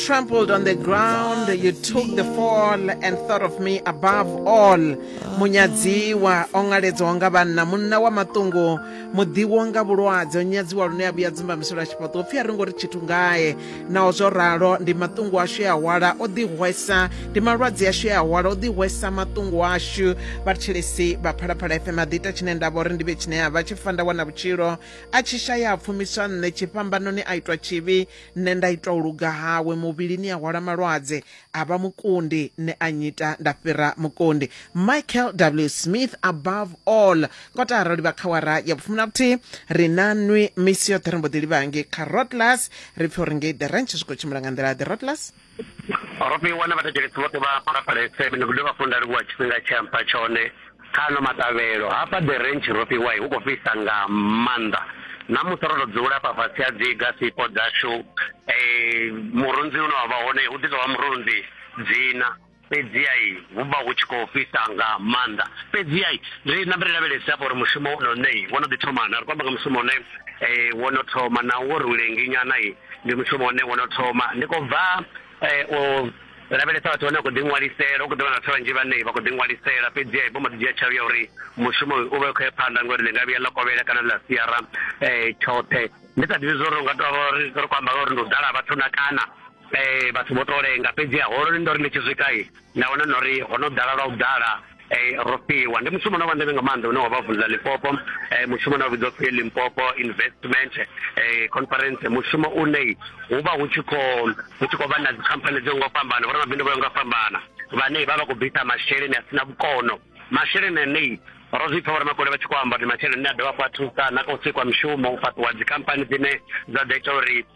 trampled on the ground you took the fall and thought of me above all munyadziwa o ṅaledzwaho nga vhanna munna wa maṱungu muḓiwo nga vhulwadze o nyadziwa lune a vhuya dzumba misolo a tshifhaṱo upfi a ri ngo ri tshithu ngae naho zwo ralo ndi maṱungu ashu e a hwala o ḓihwesa ndi malwadze ashu e a hwala o ḓihwesa maṱungu ashu vhathetshelesi vha phalaphala fm a ḓiita tshine nda vha uri ndi vhe tshine a vha tshi fa nda wana vhutshilo a tshi shaya a pfumiswa nṋe tshifhambanoni a itwa tshivhi nṋe nda ita u luga hawe muvhilini a hwala malwadze a vha mukundi nṋe a nyita nda fhira mukundi michael w smith above all kota arali vha khawara ya vhufumi na vhuthihi ri na nwi misi yoṱhe ri mbo ḓi livhangi kha rotlas ri pfhe uri ngei the ranch zwi khou tshimbila nga nḓila the rotlas Rofhiwa na vhathetshelesi vhoṱhe vha Phalaphala FM ndi khou dovha hafhu nda livhuwa tshifhinga tshe ampha tshone kha ano maṱavhelo hafha the ranch Rofhiwa hu khou fhisa nga maanḓa ṋamusi ro to dzula hafha fhasi ha dzi gasipo dzashu murunzi une wavha hone hu ḓi tovha murunzi dzina fhedziha hu vha hu tshi khou fhisa nga maanḓa fhedziha ri nambe ri lavhelese hafha uri mushumo wo no ne wo no ḓi thoma na ri khou amba nga mushumo une um wo no thoma na wo ri u lengi nyana ndi mushumo une wo no thoma ndi khou bva um u lavhelesa vhathu vhane vha khou ḓi ṅwalisela hu khou ḓi vha na vhathu vhanzhi vhane vha khou ḓi ṅwalisela fhedziha vho mbo ḓi dzhia tsheo ya uri mushumo uyu u vha u khou ya phanḓa ngori ḽi nga vhuya ḽa kovhela kana ḽa siara um tshoṱhe ndi sa ḓivhi zwa uri u nga tou vha ri khou amba nga uri ndi u ḓala vhathu na kana eh vhathu vho to lenga fhedzi ha holo ndo ri ndi tshi swika nda wana na uri ho no ḓala lwa u ḓala eh ro fhiwa ndi mushumo no vha ndeme nga maanḓa une wa vha vula Limpopo eh mushumo na vhidzwa phi Limpopo investment eh conference mushumo une hu vha hu tshi khou hu tshi khou vha na dzikhamphani dzo ngo fhambana vho mabindu vho ngo fhambana vhane vha vha khou bvisa masheleni a sina vhukono masheleni ane ro zwi pfa vho ramakole vha tshi khou amba uri masheleni a dovha fha thusa na kha u sikwa mishumo u fhaṱiwa dzikhamphani dzine dza ḓo ita uri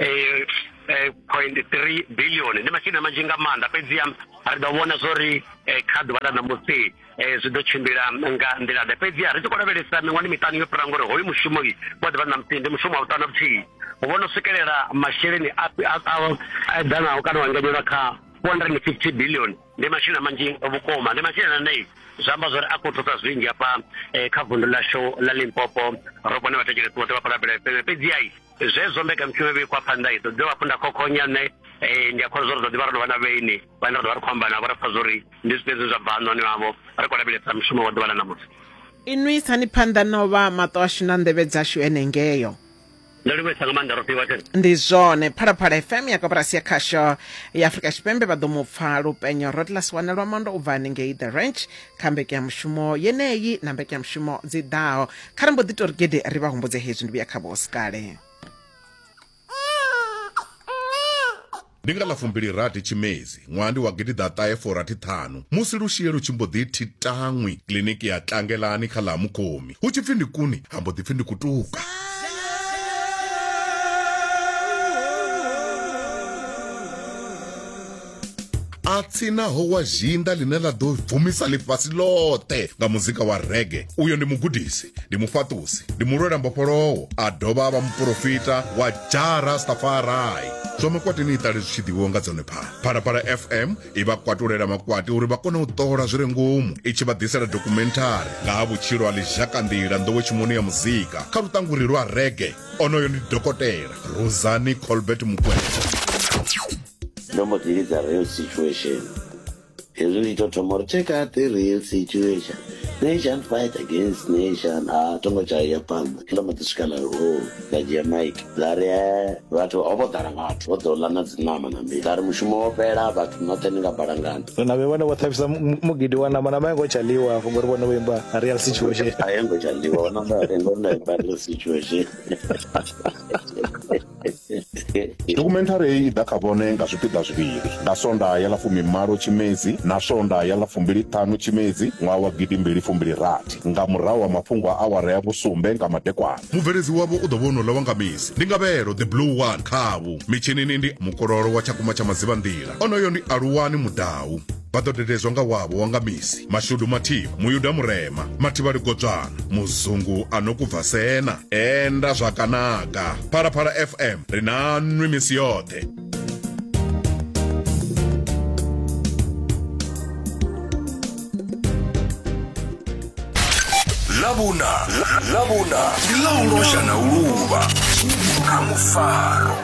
eh, eh, point three billion ndi masheleni manzhi nga maanḓa fhedziha ri ḓo vhona zwo ri eh, kha ḓuvha ḽa ṋamusi eh, zwi ḓo tshimbila nga nḓila ḓe fhedziha ri tshi khou lavhelesa miṅwani miṱanu yo fhira ngori hoyu mushumo wa ḓuvha ṋamusi ndi mushumo wa vhuṱanu vhuthihi u vhona u swikelela masheleni a eḓanaho kana wa enganyelwa kha four hundred and fifty billion ndi masheleni manzhi vhukuma ndi masheleni anei zwi amba zwori a khou thusa zwinzhi hafha eh, kha vundu ḽashu ḽa limpopo ro vhone vhathetshelesi vhoṱhe vha khou lavhelesa fhedziha zwezwo mbekanyamushumo yo vhikwa phanḓa i ḓo dovha hafhu nda khokhonya nṋe um ndi a khou zwa uri ḓo ḓivha ro no vha na vhaini vhane ra ḓo vha ri khou amba navho ra pfa zwa uri ndi zwifhio zwine zwa bva hanoni havho ri khou lavhelesa mushumo wa ḓuvha ḽa ṋamusi inwi isani phanḓa no vha maṱo ashu na nḓevhe dzashu enengeyo ndo livhuisa nga maanḓa rofhiwa tene ndi zwone phalaphala fm ya koporasi ya khasho ya afurika tshipembe vha ḓo mu pfa lupenyo rodlas wanelwa mondo u bva hanengei the ranch kha mbekanyamushumo yeneyi na mbekanyamushumo dzi ḓaho kha ri mbo ḓi tori gede ri vha humbudze hezwi ndi vhuya kha vho sikale ndi nga ḽa fumbili rathi tshimedzi ṅwaha ndi wa gidiḓaṱahe forathi ṱhanu musi lushie lu tshi mbo ḓi thi taṅwi kiliniki ya tlangelani kha ḽa mukhomi hu tshi pfi ndi kuni ha mbo ḓi pfi ndi kutuka a tsinaho wa zhinda ḽine ḽa ḓo bvumisa ḽifhasi ḽoṱhe nga muzika wa rege uyo ndi mugudisi ndi mufhaṱusi ndi mulwela mbofholowo a dovha a vha muporofita wa jara stafarai zwa makwati ni iṱale zwi tshi ḓivhiwa nga dzone phala phalaphala fm i vha kwatulela makwati uri vha kone u ṱola zwi re ngomu i tshi vha ḓisela dokumenthari nga ha vhutshilo ha ḽizhakanḓila nḓowetshimoni ya muzika kha luṱanguri lwa rege onoyo ndi dokotela rosani colbert mukwena ndo mbo ḓi lidza real situation hezwi ndi to thoma uri check out the real situation nation fight against nation a tongo tshaya phanḓa ndo mbo ḓi swika na loo nda dzhia mike nda ri e vhathu ho vho ḓala vhathu vho ḓo ḽa na dzi ṋama na mbii nda ri mushumo wo fhela vhathu noṱhe ni nga balangana na vhe vhone vho ṱhavhisa mugidi wa namba namba yengo tsha ḽiwa hafho ngori vhone vho imba real situation a yengo tsha ḽiwa wa namba yengo na imba real situation dokhumenthari heyi i ḓa kha vhone nga zwipiḓa zwivhili nga sonda ya ḽa fumimalo tshimedzi na sonda ya ḽa fumbili ṱhanu tshimedzi ṅwaha wa gidi mbili fumbili rathi nga murahu ha mafhungo a awara ya vhusumbe nga madekwana mubveledzi wavho u ḓo vha ono ḽa wanga misi ndi ngavhelo the blue one khavhu mitshinini ndi mukololo wa tshakumba tsha madzivha nḓila onoyo ndi aluwani mudau vha ḓo dededzwa nga wavho wa nga misi mashudu mathimu muyuda murema mathivhali godzwana muzungu a no kubva sena enda zwakanaka phalaphala fm ri na nwi misi yoṱhe ḽavhuna ḽavhuna ndi ḽa u losha na u luvha kha mufaro